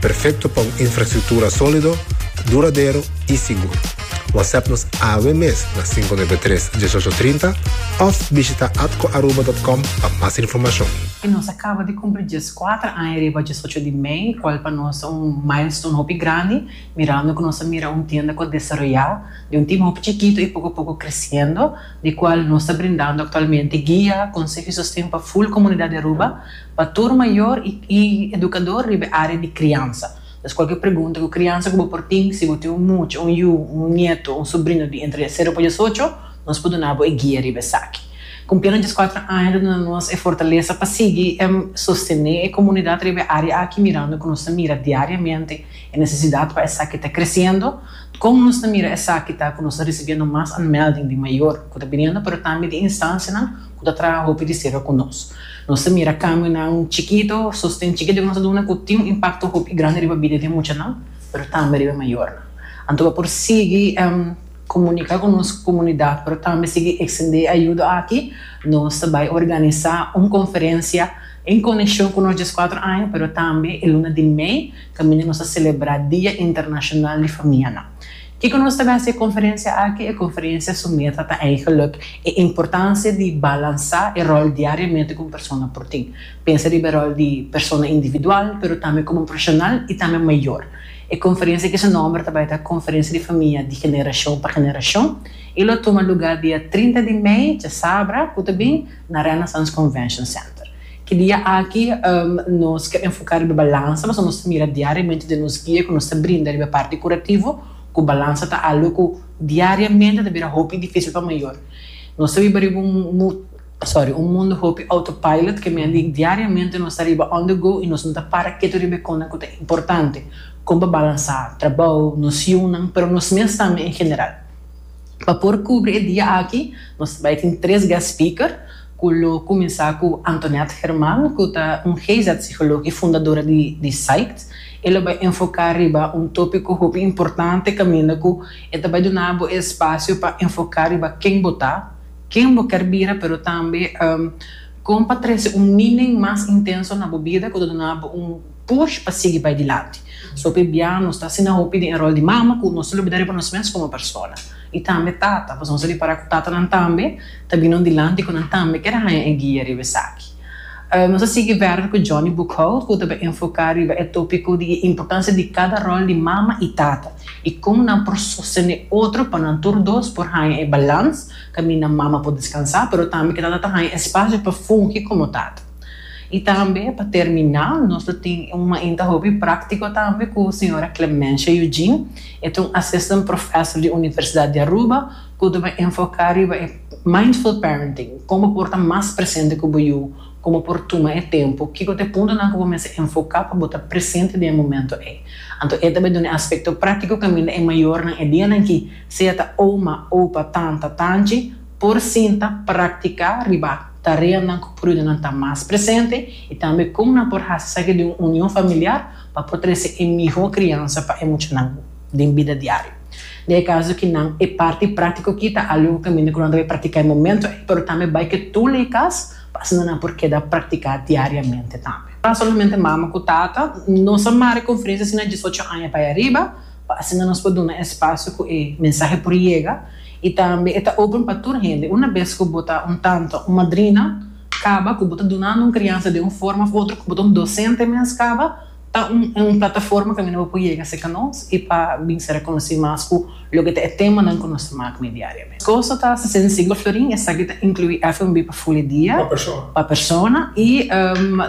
Perfecto pa un infrastructura solido, duradero y sigur. WhatsApp nos awe mes na 593 1830 of bishita atcoaruba.com pa mas informacion. Y nos a caba di cumpli diescuater aña riba diesocho di mei, cual pa nos ta un milestone hopi grandi, mirando cu nos a mira un tienda cu a desaroya di un tima hopi chikito y poco a poco creciendo, di cual nos ta brindando actualmente guia, conseho y sosten pa full comunidad di Aruba. Pa tur mayor y educador riba e area di criansa. Entonces cualkier pregunta cu criansa cu bo por tin, si bo tin un mucha, un yu, un nieto, un sobrino di entre cero pa diesocho, nos por duna bo e guia riba esaki. Cumpliendo diescuatro aña ta duna nos e fortaleza pa sigui sostene e comunidad riba e area aki mirando cu nos ta mira diariamente e necesidad pa esaki ta creciendo. Con nos ta mira esaki ta cu nos ta ricibiendo mas aanmelding di mayor cu ta biniendo pero tambe di instancianan cu ta traha hopi di cerca cu nos. Nos ta mira cambionan chikito, sosten chikito ku nos ta duna ku tin un impakto hopi grandi riba bida di e muchanan, pero tambe riba e mayornan. Anto bo por sigui komunika ku nos komunidat, pero tambe sigui ekstendé e ayudo aki. Nos ta bai organisá un konferensia en konekshon ku nos dies kuater aña, pero tambe e luna di mei kaminda nos ta selebrá Dia Internashonal di Famianan. Kiko nos ta mester e konferensia aki? E konferensia su meta ta eigelijk e importansia di balansá e ròl diariamente ku un persona por tin. Pensa riba e ròl di persona individual, pero tambe komo un profeshonal i tambe mayor. E konferensia aki su nòmber ta bai ta Konferensia di Famia di Generashon pa Generashon i lo tuma lugá dia trinta di mei, djasabra ku ta bin, na Renaissance Convention Center. Ki dia aki nos ke enfoká riba balansa pasobra nos ta mira diariamente den nos guia ku nos ta brinda riba e parti kurativo ku balansa ta algu ku diariamente ta bira hopi difísil pa mayor. Nos ta biba riba un sorry un mundu hopi autopilot ke mea di diariamente nos ta riba on the go i nos no ta para ketu riba e konnan ku ta importante kon pa balansá trabou, nos yunan pero nos mes tambe en general. Pa por kubri e dia aki nos ta bai tin tres guest speaker. cu lo cuminsa cu Antoinette German, cu ta un GIZ-psicolog y fundadora di di Psyched. E lo bay enfoca riba un topico hopi importante caminda cu e ta bay duna bo e espacio pa enfoca riba ken bo ta, ken bo ker bira pero tambe con pa trece un meaning mas intenso na bo bida cu ta duna bo un push pa sigui bai dilanti. So hopi bia nos ta asina hopi den e rol di mama ku nos ta lubida riba nos mes komo persona. I tambe tata, pasobra nos ta di para ku tatanan tambe ta bini un dilanti ku nan tambe ker haña e guia riba esaki. Nos a sigui verder ku Johnny Boekhout ku ta bai enfoká riba e tópiko di e importansia di kada rol di mama i tata i kon nan por sostené otro pa nan tur dos por haña e balans kaminda mama por deskansá pero tambe ku tata ta haña espasio pa fungi komo tata. Y tambe pa terminá nos lo tin un mainta hopi práctico tambe cu señora Clemencia Eugene, e ta un Assistant Professor di Universidad di Aruba cu ta bay enfocá riba e Mindful Parenting, como por ta mas presente cu bo yu, como por tuma e tempo, kico ta e puntonan cu bo mester enfocá pa bo ta presente den e momento ey. Anto e ta bay duna e aspecto práctico caminda e mayornan e dianan aki, sea ta oma, opa, tanta, tanchi, por sinta, practicá riba. tareanan ku prudenan ta mas presente i tambe kon nan por hasi esaki den un union familiar pa por trese e mihó kriansa pa e muchanan den bida diario. Na e kaso ki nan e parti práktiko aki ta algu ku kaminda ku nan ta bai praktiká e momentu ei, pero tambe bai ke tur lei kas pa asina nan por keda praktiká diariamente tambe. Solamente mama ku tata nos a mari konferensia si nan diesocho aña pa e ariba, pa asina nos por duna espacio cu e mensahe por yega y tambe e ta open pa tur hende. Una bes cu bo ta un tanto un madrina caba cu bo ta dunando un crianza den un forma of otro, cu bo ta un docente mes caba, ta un un plataforma caminda bo por yega cerca nos y pa bin ser reconoci mas cu loke ta e temanan cu nos ta maak mee diariamente. Cosa ta sucede siglo florin, esaki ta inclui FNB pa ful e dia, pa persona y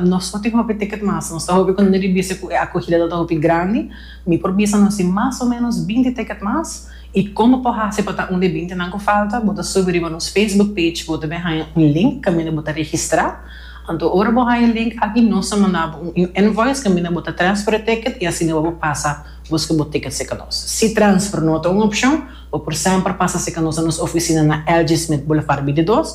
nos no tin hopi ticket mas, nos ta hopi contento di bisa cu e acogida ta hopi grandi. Mi por bisa nos tin mas o menos binti ticket mas y con bo por haci pa ta un di e bintinan cu falta bo ta subi riba nos Facebook page bo ta bin haya un link caminda bo ta registra anto ora bo haya e link aki nos ta manda bo un invoice caminda bo ta transfer e ticket y asina bo por pasa busca bo ticket si ca nos si transfer no ta un opcion bo por semper pasa si ca nos na nos oficina na LG Smith Boulevard binti dos